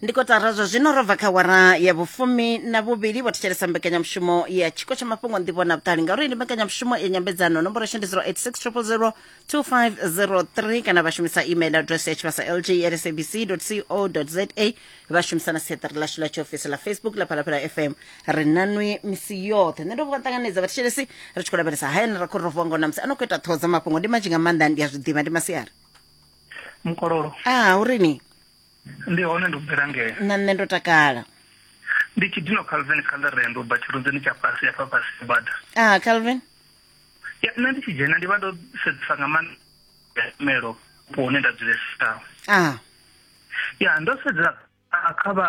ndi kotara zwa zwino ro bva kha wara ya vhufumi na vhuvhili vho thetshelesa mbekanyamushumo ya tshiko tsha mafhungo nḓivho na vhuṱali ngauri ndi mbekanyamushumo ya nyambedzano nomboro shandi 0860002503 kana vha shumisa email address ya tshivhasa lg at sabc co za vha shumisa na siaṱari ḽashu ḽa tshiofisi ḽa facebook ḽa phalaphala fm ri nanwi misi yoṱhe nṋe ndo vha ṱanganedza vhathetshelesi ri tshi khou lavhelesa hayani ra khou ro vuwa ngo na musi a no khou ita ṱhoho dza mafhungo ndi manzhi nga maanḓa ndi a zwi ḓivha ndi masiari mukololo a uri ni ndi hone ndo bvela ngeo na nṋe ndo takala ndi tshidino calvin khalarendo ba tshirunzeni tsha fhasi ya fhafhasi bada a calvin ya nṋe ndi tshi dzhena ndi vha ndo sedzisa nga maanḓa melo po hune nda dzulesa a ya ndo sedzela kha vha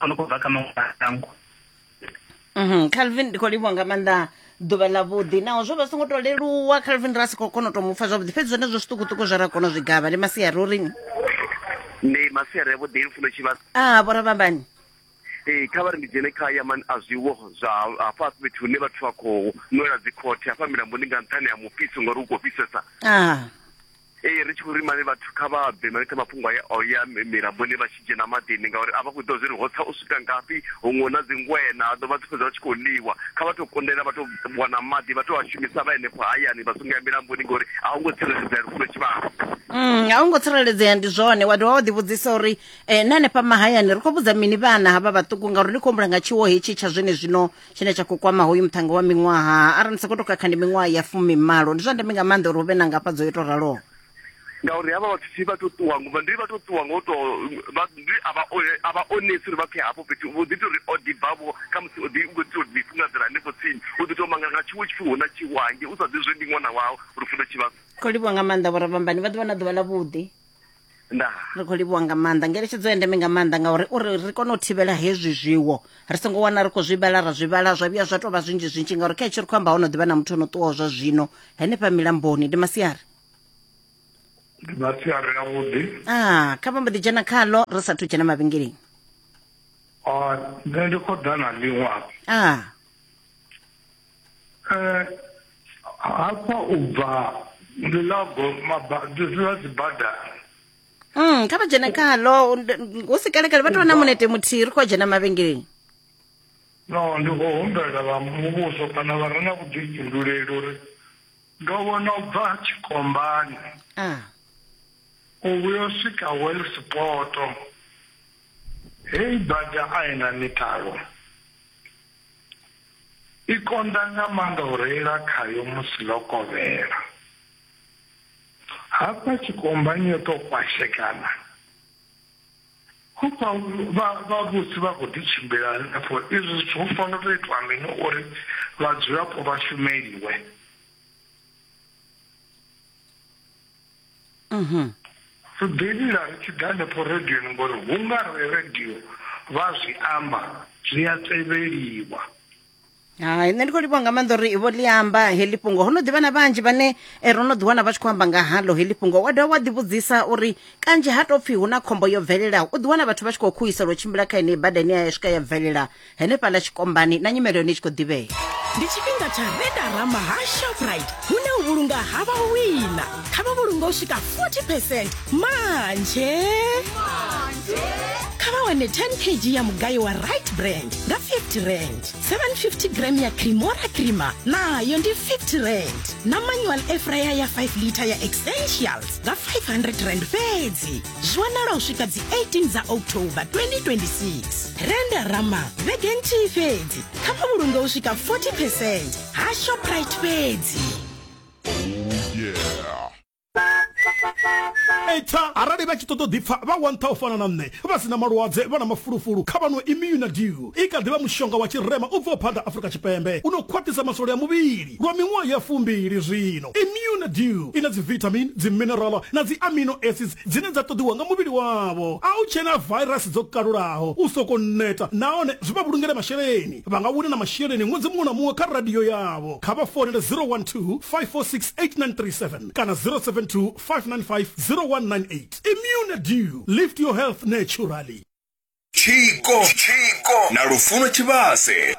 a no khou bva kha maṅwe mashango Mhm, calvin ndi khou livhuwa nga maanḓa ḓuvha ḽa vhuḓi naho zwo vha songo to leluwa calvin ra si khou kona u to mupfa zwavhuḓi fhedzi zwenezwo zwiṱukuṱuku zwe ra kona u zwi gavha ndi masiari uri ndi masiari avhuḓi lufuno tshivha a vho ravhambani ee kha vha ri ndi dzhene kha yaman a zwiwo zwa hafha fhethu hune vhathu vha khou nwela dzikhothe hafha milamboni nga nṱhani ha mufhiso ngori u khou fhisesa a Ee, ri tshi khou ri mane vhathu kha vha bve maipfi a mafhungo aya a u ya milamboni vha tshi dzhena maḓini, ngauri a vha khou ḓivha zwa uri ho tsa u swika ngafhi, huṅwe hu na dzingweṋa, ha ḓo vha dzi fhedza vha tshi khou ḽiwa. Kha vha tou kundelwa vha tou wana maḓi vha tou a shumisa vha henefho hayani vha songo ya milamboni ngori a hu ngo tsireledzea lufuno tshivhalo. Mm, a hu ngo tsireledzea ndi zwone wa dovha wa ḓivhudzisa uri um na hanefha mahayani ri khou vhudza mini vhana havha vhaṱuku ngauri ndi khou humbula nga tshiwo hetshi tsha zwene zwino tshine tsha khou kwama hoyu muthannga wa miṅwaha arali ni sa khou tou khakha ndi miṅwaha ya fumimalo ndi zwa ndeme nga maanḓa uri hu vhe na ngafhadzo yo tou raloho ngauri havha vhathu thi vha to ṱuwa ngo ndi vha to ṱuwa ngo to ndi a vha a vha onesi uri vha pfhe hafho fhethu vho ḓi tori o ḓibvavho kha musi o ḓi u khou ḓi tori ḓifungadzela hanefho tsini u ḓi tou manga nga tshiwo tshipfi hu na tshiwange u sa ḓi zwe ndi ṅwana wau uri funa tshivhasa khou livhuwa nga maanḓa vho rabambani vha ḓuvha na ḓuvha ḽa vhuḓi ndaa ri khou livhuwa nga maanḓa ngeletshedzo ya ndeme nga maanḓa ngauri uri ri kone u thivhela hezwi zwiwo ri songo wana ri khou zwi vhala ra zwi vhala zwa vhuya zwa tou vha zwinzhi zwinzhi ngauri kha hetshi ri khou amba ho no ḓivha na muthu o no ṱuwaho zwa zwino henefha milamboni ndi masiari ndi masiari avhuḓi a ah, kha vha mbo ḓi dzhena khaḽo ri sathu dzhena mavhengeleni ah, nṋe ndi khou ḓa na ḽiṅwe a ah. eh, hafha u bva ndi ḽa dzibada mm kha vha dzhene khalo hu si kalekale vha tou vha na munete muthihi ri khou dzhena mavhengeleni no ndi khou humbela vha muvhuso kana vha re na vhuḓifhinduleli uri ndo vhona u bva tshikombani ah. u vhuyo swika welsipoto hei bada a i na mitalo I konḓa nga maanḓa u reila khayo musi ḽo kovhela. Hafha tshikombani yo tou kwashekana. Hufha vhavhusi vha khou ḓi tshimbila hanefho izwi zwithu hu fanela tou itwa mini uri vhadzulapo vha shumeliwe? Sibelila ri tshi ḓa hanefho radioni ngori hu nga re radio vha zwi amba zwi a tevheliwa hai nṋe ndi khou livhuwa nga maanḓa uri vho ḽi amba heḽi fhungo ho no ḓivha na vhanzhi vhane eh, ro no ḓiwana vha tshi khou amba nga halo heḽi fhungo wa dovha wa ḓivhudzisa uri kanzhi ha tou pfhi hu na khombo yo bvelelaho u ḓiwana vhathu vha tshi khou khuhisela u tshimbila kha yeneyi bada ine ya swika ya bvelela henefhaḽa tshikombani na nyimelo yone i tshi khou ḓivhea ndi tshifhinga tsha redarama ha shoprite hune u vhulunga ha vha wina kha vha vhulunga u swika 40 percent manje kha vha wane 10 kg ya mugayo wa right brand nga 50 rand 750 gram ya cremora crema nayo ndi 50 rand na manual efraya ya 5 liter ya essentials nga 500 rand fhedzi zwonala u swika dzi 18 dza october 2026 renda rama vhege nthihi fhedzi kha vha vhulunge u swika 40 percent ha shoprite fhedzi eita arali vha tshi ṱoḓa u ḓipfa vha wantha u fana na nṋe vha si na malwadze vha na mafulufulu kha vhanwe immunadew i kha ḓivha mushonga wa tshirema u bvaho phanḓa afrika tshipembe u no khwaṱhisa masole a muvhili Lwa miṅwaha ya fumbili zwino, Immune Dew i na dzivithamini, dziminerala na dzi amino acids dzine dza ṱoḓiwa nga muvhili wavho. A hu tshena vairasi dzo kalulaho, u sokou neta nahone zwi vha vhulungele masheleni. Vha nga wina na masheleni ṅwedzi muṅwe na muṅwe kha radio yavho. Kha vha founele 012-546-8937 kana 072-595-0198. Immune Dew, lift your health naturally. Tshiko na Lufuno Tshivhase.